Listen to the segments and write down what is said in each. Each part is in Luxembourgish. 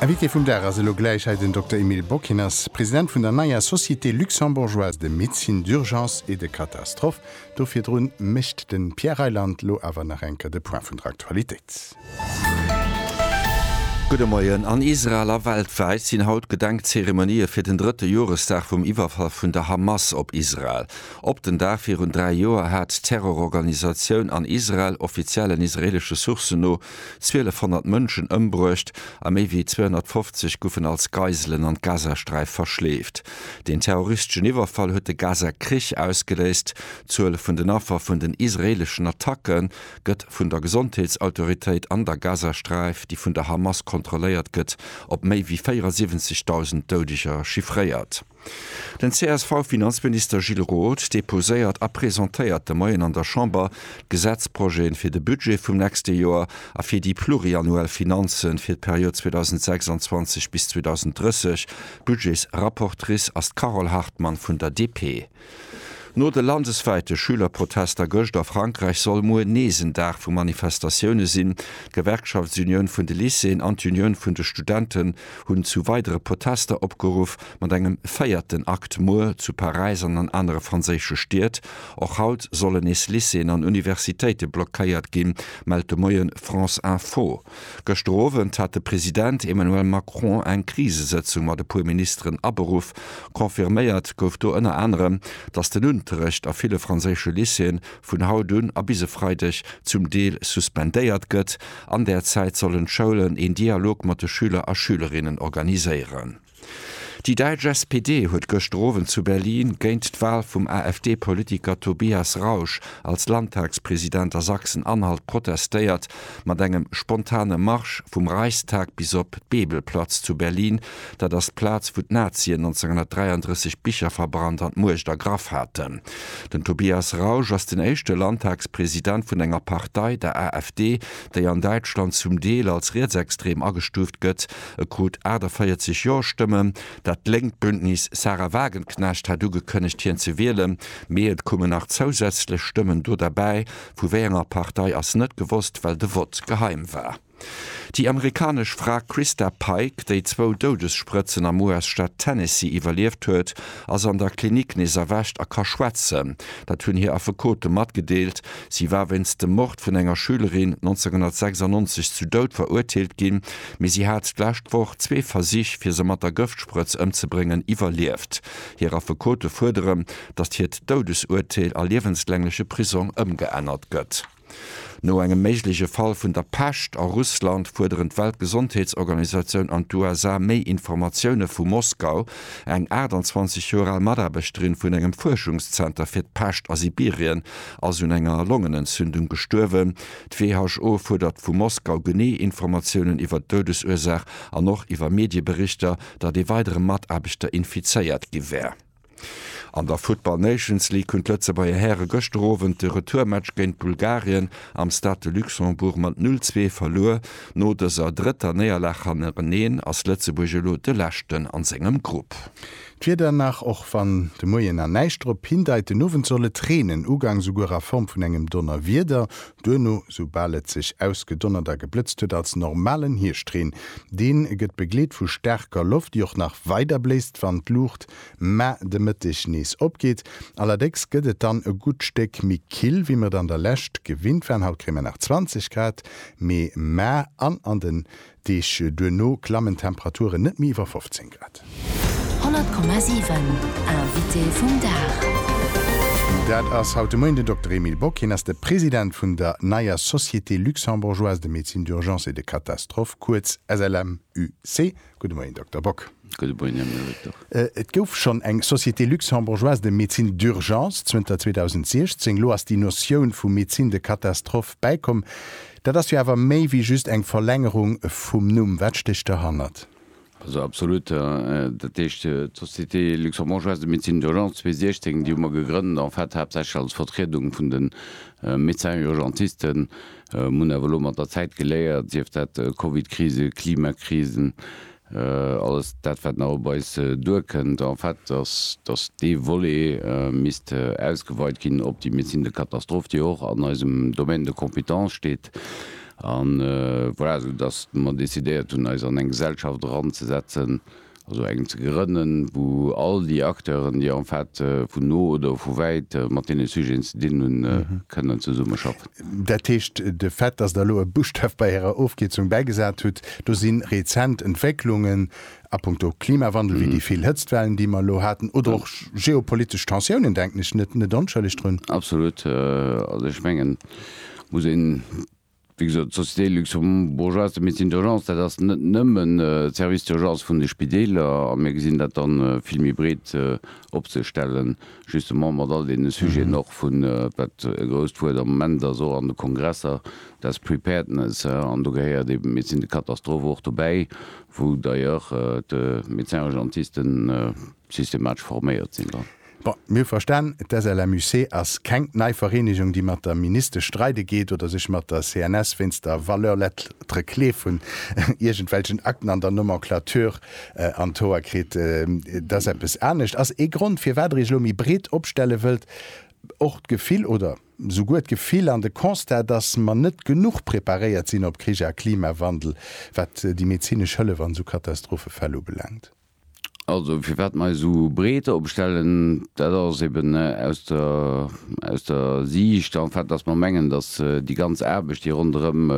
Invité vum Dag ass elo gläich hei den Dokter Emile Bock. Hien ass President vun der neier Société luxembourgeoise de médecine d'urgence et de catastrophe. Do virdrun mécht de Pierre Reyland lo awer nach eng Kéier de Point vun der Aktualitéit. Gudde Moien. An Israel a weltwäit sinn haut Gedenkzeremonië fir den drëtte Joresdag vum Iwwerfall vun der Hamas op Israel. Op den Dag virun dräi Joer hat d'Terrororganisatioun an Israel, offiziellen israeelesche Sourcen no, 1.200 Mënschen ëmbruecht a méi wéi 250 goufen als Geiselen an d'Gazasträif verschleeft. Deen terroristeschen Iwwerfall huet de Gaza-Krich ausgeléist. D'Zuel vun den Affer vun den israeeleschen Attacke gëtt vun der Gesondheetsautoritéit an der Gazasträif, déi vun der Hamas kontrolléiert gëtt, op méi wéi 74.000 Doudeger chiffréiert. Den CSV-Finanzminister Gilles Roth deposéiert a presentéiert de Moien an der Chamber d'Gesetzprojeten fir de Budget vum nächste Joer a fir déi pluriannuell Finanzen fir d'Period 2026 bis 2030. Budgetsrapportrice ass d'Carole Hartmann vun der DP. No de landeswäite Schülerprotester gëscht a Frankräich soll muer nees en Dag vu Manifestatioune sinn. D'Gewerkschaftsunioun vun de Lycéeën an d'Unioun vun de Studenten hunn zu weidere Protester opgeruff, mat engem véierten Akt muer zu Paräis an an anere franséische Stied. Och haut sollen nees Lycéeën an Universitéite blockéiert ginn, mellt de Moien France Info. Gëschter Owend hat de President Emmanuel Macron eng Krisesëtzung mat e puer Ministeren aberuff. Confirméiert gouf do ënner anerem, datt den Unterrecht a ville franséische Lycéeën vun haut un a bis e Freideg zum Deel suspendéiert gëtt. An där Zäit sollen d'Schoulen een Dialog mat de Schüler a Schülerinnen organiséieren. Déi däitsch SPD huet gëschter Owend zu Berlin géint d'Wal vum AfD-Politiker Tobias Rausch als Landtagspresident a Sachsen-Anhalt protestéiert, mat engem spontane Marsch vum Reichstag bis op d'Bebelplatz zu Berlin, dat ass d'Plaz, wou d'Nazien 1933 Bicher verbrannt an d'Muecht ergraff haten. Den Tobias Rausch ass den éischte Landtagspresident vun enger Partei, der AfD, déi an Däitschland zum Deel als rietsextrem agestuuft gëtt, E krut 48 Jo-Stëmmen. Dat lénkt Bündnis Sahra Wagenknecht hat ugekënnegt, hien ze wielen. Mee et kommen nach zousätzlech Stëmmen do derbäi. Vu wéi enger Partei ass net gewosst, well de Vott geheim war. Déi amerikanesch Fra Christa Pike, déi zwou Doudessprëtzen am US-Staat Tennessee iwwerlieft huet, ass an der Klinik nees erwächt a ka schwätzen. Dat hunn hir Affekote matgedeelt. Si war wéinst dem Mord vun enger Schülerin 1996 zu Doud verurteelt ginn. Mee si hat d'lescht Woch zwee Versich, fir se mat der Gëftsprëtz ëmzebréngen, iwwerlieft. Hir Affekote fuerderen, datt hiert Doudesuerteel a liewenslängleche Prisong ëmgeännert gëtt. No engem méigleche Fall vun der Pescht a Russland fuerderen d'Weltgesondheetsorganisatioun an d'USA méi Informatioune vu Moskau. Eng 28 Joer al Mataarbechterin vun engem Fuerschungszenter fir d'Pescht a Sibirien ass un enger Longenentzündung gestuerwen. D'WHO fuerdert vu Moskau genee Informatiounen iwwer d'Doudesursaach an och iwwer Medieberichter, datt ee weidere Mataarbechter infizéiert gi wär. An der Futtball Nations League hunn d'Lëtzebuerger Häre gëschter Owend de Retourmatch géint Bulgarien am Stade de Luxembourg mat 'null zwee' verluer. No dëser drëtter Néierlag hannereneen ass Lëtzebuerg elo de Leschten a sengem Grupp. D'Wieder nach, och wann de Moien an näischt drop hindeit, den Owend soll et reenen, ugangs souguer a Form vun engem Donnerwieder, duerno, soubal et sech ausgedonnert a geblëtzt huet, als normalen Hierscht-Reen. Dee gëtt begleet vu staarker Loft, déi och nach weider bléist, wann d'Luucht mä de Mëtteg nees opgeet. Allerdécks gëtt et dann e gutt Stéck méi kill, wéi mer et an der Lescht gewinnt waren. Haut kréie mer nach 20 Grad, Mee mä an an de Deeg duerno klammen d'Temperaturen net méi iwwer 15 Grad. 100,7 Invité vum Dag. Dat ass haut de Moien den Dokter Emile Bock. Hien ass de President vun der neier Société luxembourgeoise de médecine d'urgence et de catastrophe, kuerz SLMUC. Gudde Moien, Dokter Bock. Et gouf schonn eng Société luxembourgeoise de médecine d'urgence zënter 2016. Elo ass déi Notioun vu médecine de catastrophe bäikomm. Dat ass jo awer méi wéi just eng Verlängerung vum Numm. Wat stécht derhannert? Also absolut. Dat heescht, d'Société luxembourgeoise de médecine d'urgence 2016, déi hu mer gegrënnt en fait haaptsächlech als Vertriedung vun de Médecins urgentisten. Mir hunn awer elo mat der Zäit geléiert, sief dat Covidkrise, Klimakrisen, Alles dat, wat nach op eis duerkënnt, en fait, dass, dass dee Volet misst ausgeweit ginn op déi Médecine de catastrophe, déi och an eisem Domaine de compétence steet. A voilà, soudass mer decidéiert hunn, eis an eng Gesellschaft eranzesetzen, also eng ze grënnen, wou all déi Acteuren, déi en fait vun no oder vu wäit mat deene Sujeten ze dinn hunn, kënnen zesummeschaffen. Dat heescht, de Fait, dass Der elo e Buschtaf bei Ärer Ofkierzung bäigesat hutt, do si rezent Entwécklungen a punkto Klimawandel, wéi déi vill Hëtztwellen, déi mer elo haten, oder och geopolitesch Tensiounen, denken ech, net net onschëlleg drun. Absolut. Also ech mengen, muss een, wéi gesot, d'Société luxembourgeoise de médecine d'urgence, dat ass net nëmmen de Service d'urgence vun de Spideeler, a mir gesinn dat dann vill méi breet opzestellen, Justement mat all deene Sujeten och vun, wat e grousst Wuert am Moment ass och an de Kongresser, dass Preparedness. An do gehéiert eben d'Médecine de catastrophe och dobäi, wou d'ailleurs d'Médecins urgentistes systematesch forméiert sinn dran. Bon, mir hu verstan, d'SLMUC ass keng nei Vereenegung, déi mat der Ministesch streide geet oder sech mat der CNS wéinst der Valeur lettre clé vun iergendwelchen Akten an der Nomenclature an d'Hoer kritt, et ass eppes anescht, ass ee Grond firwat Der Iech elo méi breet opstelle wëllt, och d'Gefill oder souguer d'Gefill an de Constat, datt mer net genuch preparéiert sinn op Krich a Klimawandel, wat déi medezinesch Hëllef an esou Katastrophefäll ubelaangt? Also firwat mer eis esou breet opstellen, dat ass eben aus der, aus der Siicht en fait, datt mer mengen, datt déi ganz Aarbecht, déi ronderëm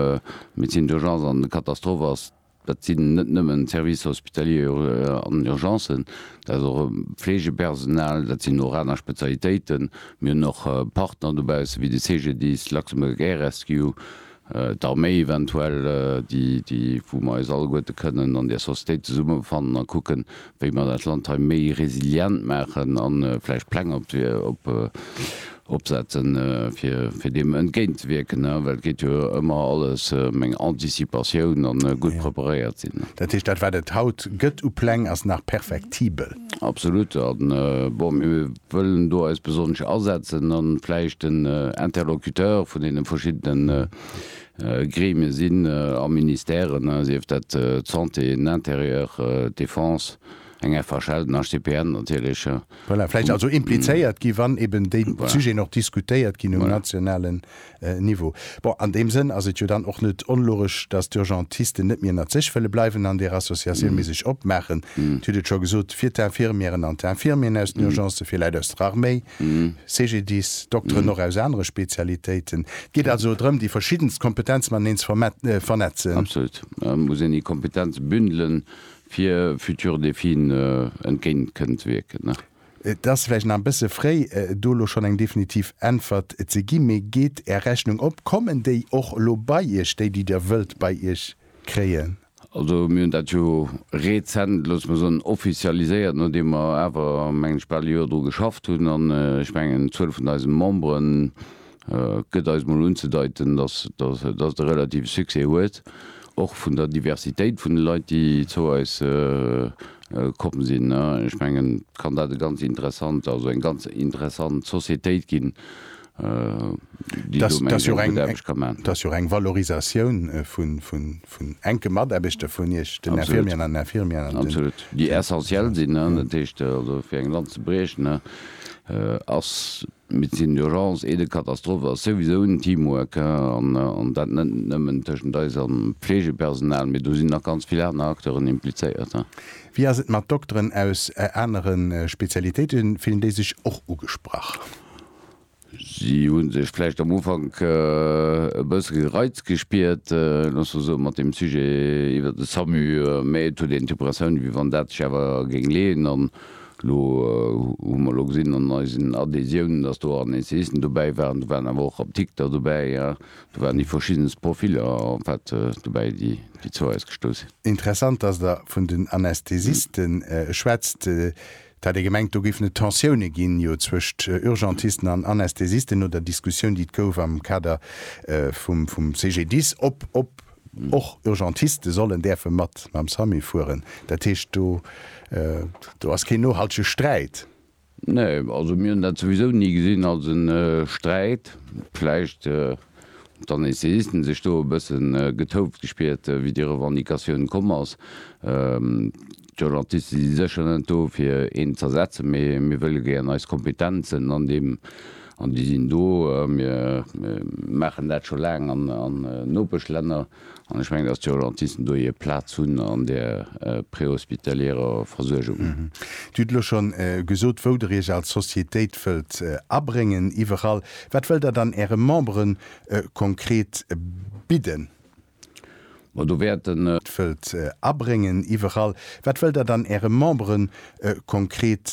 d'Médecine d'urgence an d'Katastrophe ass, Dat sinn net nëmmen Services hospitaliers an Urgencen, dat ass och Pflegepersonal, dat sinn och aner Spezialitéiten. Mir hunn och Partner dobausse wéi de CGDIS, Luxembourg Air Rescue, d'Arméi eventuell, déi, wou mer eis alleguerte kënnen an där Sociétéit zesummefannen a kucken, wéi mer dat Land hei méi resilient maachen a vläicht Pläng opsetzen, fir deem entgéintzewierken, well et geet jo ëmmer alles ëm eng Anticipatioun a gutt preparéiert sinn. Dat heescht, dat wat et haut gëtt u Pläng, ass nach perfektibel? Absolut. A bon, mir wëllen do eis besonnesch asetzen a vläicht den Interlocuteur vun deene verschiddene Gremie sinn a Ministèren, sief dat d'Santé, den Intérieur, d'Défense, eng FHL, den HCPN natierlech. Voilà, vläicht also implizéiert gi wann eben déi Sujeten och diskutéiert ginn um nationalen Niveau. Bon, an deem Sënn ass et jo dann och net onlogesch, datt d'Urgentisten net méi ënnert sech wëlle bleiwen an där Associatioun, mee sech opmaachen, Dir hutt et scho gesot, fir d'Infirmièren an d'Infirmieren aus den Urgencen, fir Leit aus der Arméi, CGDIS, Dokteren och aus anere Spezialitéiten, Geet also drëm déi verschiddenst Kompetenze mateneen ze vernetzen. Absolut. Et muss een déi Kompetenze bündelen, fir future Défien entgéint kënnen ze wierken. Et ass vläicht nach e bësse fréi do elo schonn eng definitiv Äntwert ze ginn, mee geet Är Rechnung op? Kommen déi och elo bei Iech, déi, déi Dir wëllt bei Iech kréien? Also mir hunn dat jo rezent, loosse mer soen, offizialiséiert, nodeem mer awer, mengen ech, bal e Joer dru geschafft hunn. An ech mengen, d'Zuel vun eise Membere gëtt eis mol unzedeiten, dass et e relative Succès huet, och vun der Diversitéit vun de Leit, déi zou eis komm sinn. Ech mengen, et kann dat e ganz interessant, also eng ganz interessant Societéit ginn, Dat ass jo eng Valorisatioun vun enke Mataarbechter vun Iech, den Infirmieren an Infirmièren. Absolut, déi essentiel sinn. Dat heescht also, fir eng Lanz ze briechen, ass Médecine d'urgence et de catastrophe ass souwisou en Teamwork, an dat net nëmmen tëschent eis a Fleegepersonal, mee do sinn nach ganz vill aner Acteuren implizéiert. Wéi ass et mat Dokteren aus anere Spezialitéiten, fillen déi sech och ugesprach? Si hu sech vläicht am Ufank e bësse gereizt gespiert, looss mer soen, mat deem Sujet iwwert de Samu, mä et huet een d'Impressioun, wéi wann dat sech awer géing leeën. An elo hu mer elo gesinn an eisen Adhésiounen, dass do an Essayisten dobäi waren, do waren awer och Apdikter dobäi, do waren déi verschiddenst Profiller en fait dobäi, déi zu eis gestouss sinn. Interessant, dass Der vun den Anästhesisten schwätzt. Et hat ee gemengt, do géifen et Tensioune ginn, jo zwëscht Urgentisten an Anästhesisten, no der Diskussioun, déi et gouf am Kader vum CGDIS, ob och Urgentiste sollen däerfe mat mam SAMI fueren. Dat heescht, do ass keen nohaltege Sträit. Nee, also mir hunn dat souwisou ni gesinn als e Sträit. Vläicht hunn d'Anästhesisten sech do e bësse getoft gespiert, wéi déi Revendicatioun komm ass. D'Urgentisten si sécher net do fir een z'ersetzen, mee mir wëlle gären eis Kompetenzen an deem, an déi sinn do, mir maachen dat scho laang an Nopeschlänner, an ech mengen, datt d'Urgentisten do hir Plaz hunn an där préhospitalierer Versuergung. Dir hutt elo scho gesot, wou Der Iech als Societéit wëllt abréngen, iwwerall. Wat wëllt Der dann Äre Membere konkret bidden? Ma do wäert den. Wëllt abréngen iwwerall. Wat wëllt Der dann Äre Membere konkret